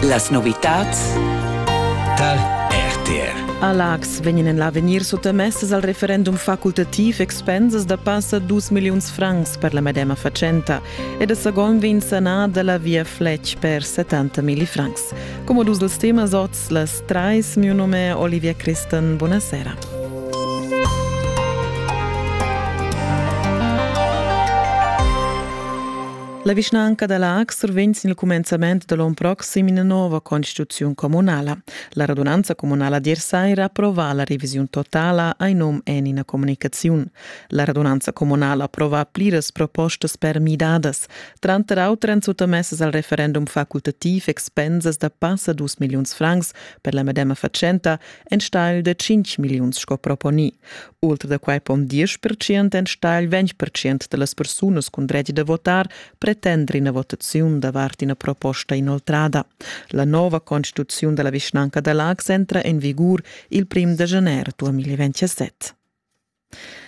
Las novitads tar RTR. A Laax vegnan en l'avegnir suttamessas al referendum facultativ expensas da passa 2 milliuns francs per la medema fatschenta e da Sagon vegn sanà da la via Fletch per 70 milli francs. Come dus dels temas oz, las trais, mio nome Olivia Christen, buonasera. La vischnanca da Laax survegn sin il cumenzament da l'onn proxim ina nova constituziun communala. La radunanza communala d'ier saira approva la revisiun totala ai nom en ina comunicaziun. La radunanza communala approva pliras propostas per midadas. Tranter auter èn suttamessas al referendum facultativ expensas da passa dus milliuns francs per la medema fatschenta enstagl da cinc milliuns sco proponì. Oltre da quai pon 10% enstagl 20% da las persunas cun dretg da votar pretender ina votaziun davart ina proposta inoltrada. La nova constituziun da la vischnanca da Laax entra en vigur il prim da gener 2027.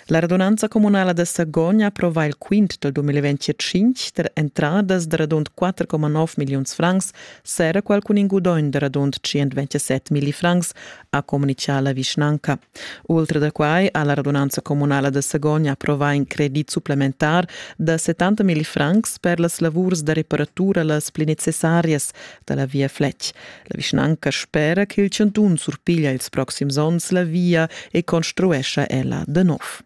La radunanza communala da Sagogn approva il quint dal 2025 per entradas da radund 4,9 milliuns francs Sera quel cun in gudogn da radund 127 millifrancs, ha communichà la vischnanca. Ultra da quai ha la radunanza communala da Sagogn approvà in credit supplementar da 70 millifrancs per las lavurs da reparatura las pli necessarias da la via Fletg. La vischnanca spera ch'il chantun surpiglia ils proxims onns la via e construescha ella da nov.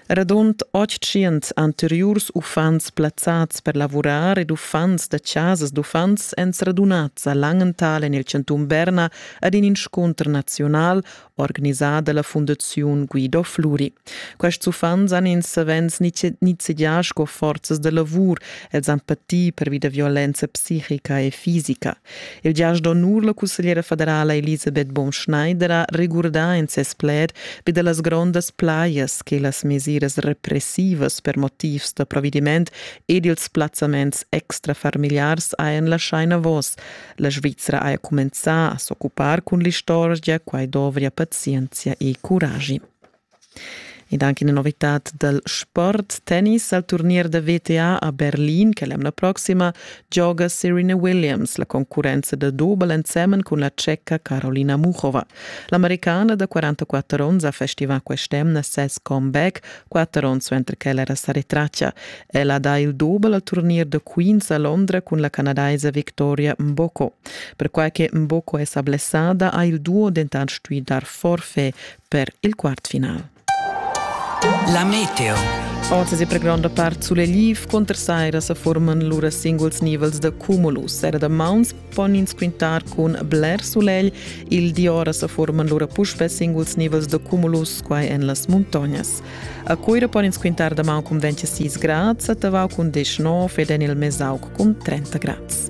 Radund otschient anteriurs uffants plazzads per lavurar ed uffants da chasas d'uffants èn sradunads a Langenthal en il chantun Berna ad in inscunter naziunal organisà da la fundaziun Guido Fluri. Quests uffants han ins savens nizzegià sco forzas da lavur, els han patì pervi da violenza psichica e fisica. Il giast d'onur la cussegliera federala Elisabeth Bonschneider ha regurdà in ses pled vi da las grondas plajas che las mesiras repressivas per motivs da provvediment ed ils plazzaments extrafamiliars hajan laschà enavos. La Svizra haja cumenzà a s'occupar cun l'istorgia, quai dovria pazienzia e curagi. ed anche una novità dal sport tennis al turnier da VTA a Berlin che l'emna prossima gioga Serena Williams, la concurrenza da double ensemen con la tschecca Carolina Muchova. L'americana da 44 onns ha festivato quest'emna ses comeback, quattro onns mentre che era sa retraccia. Ella dà il double al turnier da Queens a Londra con la canadaise Victoria Mboko. Perquai che Mboko è sa blessada, ha il duo dentant stuì dar forfè per il quartfinal. La meteo. Oz è per gronda part sulle liv conter saira se forman lura singuls nivels de cumulus. Era da mauns pon ins quintar cun bler sulegl, il di ora se forman lura puspe singuls nivels de cumulus quai en las montagnas. A cuira pon ins quintar da mau cun 26 grads, a tavau cun 19 ed en il mesauc cun 30 grads.